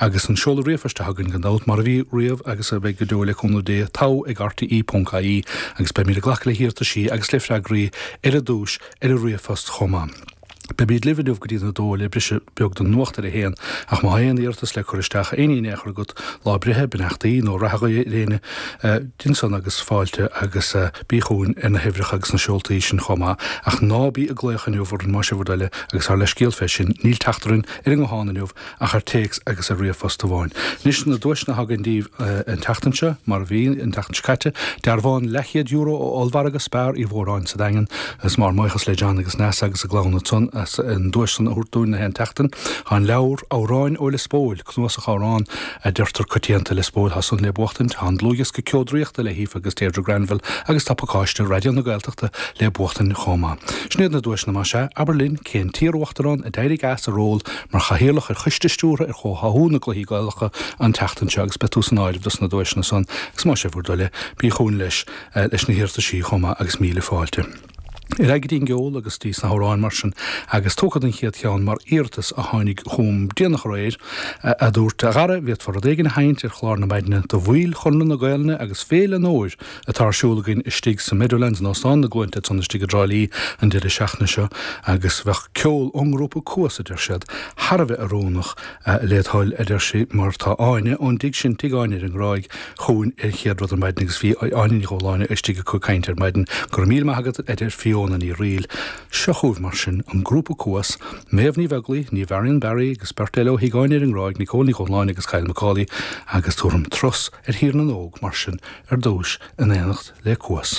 Agus an seoladh ríomhphoist atá againn gan dabht, mar a bhí riamh agus a bheidh go deo le cúnamh Dé, togha ag rte.ie agus beimid ag glacadh le hiarrataisí agus le freagraí ar an duais ar an ríomhphost chomh maith. Beimid libh inniu go dtí'n 2 le briseadh beag don nuacht ar a haon ach má thá aon iarratas le cur isteach, aon ní in aon chor agat, lá breithe, beannachtaí nó rath a ghuí ar éinne, déan san agus fáilte agus bí chugainn ar na huimhreacha agus na seoltaí sin chomh maith. Ach ná bí ag glaoch inniu orainn más é bhur dtoil é agus ár leithscéal fé sin, níl teacht orainn ar an nguthán inniu ach ar téacs agus ar ríomhphost amháin. Anois, na duaiseanna atá againn daoibh an tseachtain seo, mar a bhí an tseachtain seo caite, dearbhán leathchéad euro ó ollmhargadh Spar Uí Mhóráin sa Daingean. Is mór ár mbuíochas le John agus Neasa agus a gclann ansan as an duais san a thabhairt dúinn gach aon tseachtain. Tá an leabhar, Amhráin ó Lios Póil, cnuasach amhrán a deirtear coitianta i Lios Póil, tá san le buachtaint. Tá an dlúthdhiosca Ceo Draíochta le hAoife agus Deirdre Granville agus tá pacáiste Raidió na Gaeltachta le buachtaint chomh maith. Sin iad na duaiseanna, más ea, abair linn, cén t-iar-uachtarán a d'éirigh as a ról mar Chathaoirleach ar Choiste Stiúrtha ar Chomhtháthú na gCluichí Gaelacha an tseachtain seo agus beidh tú san áireamh dos na duaiseanna san agus más é bhur dtoil é, bí chugainn leis leis na hiarrataisí chomh maith agus míle fáilte ar aghaidh go dtí an gceol agus dtí na hamhráin mar sin agus tabharfad an chéad cheann mar iarratas a tháinig chugam déanach aréir, a dúirt a Dhara an bhféadfá rud éigin a sheinnt ar chlár na maidne do bhaill Chonradh na Gaelainne agus Féile an Fhómhair atá ar siúl againn istigh sa Meadowlands, in Óstán na gCluainte, ansan istigh i dTrá Lí, an deireadh seachtaine seo, agus bheadh ceol ón ngrúpa Cuas, a deir siad, thar a bheith oiriúnach, le do thoil, a deir sí, mar tá Áine, ón dtigh sin, Tigh Áine ar an nGráig, chugainn an chéad rud ar maidin, agus bhí Áine Uí Dhubhshláine istigh acu ag caint ar maidin. Go raibh míle maith agat, a deir Fiona Ní Fhrighil. Seo chugaibh, mar sin, an grúpa Cuas, Méabh Ní Bheaglaoich, Niamh Varian-Barry, agus beirt eile ó Thigh Áine ar an nGráig, Nicole Ní Dhubhshláine agus Kyle Macaulay, agus tabharfaimid turas, ar Thír na nÓg, mar sin, ar dtúis, in éineacht le Cuas.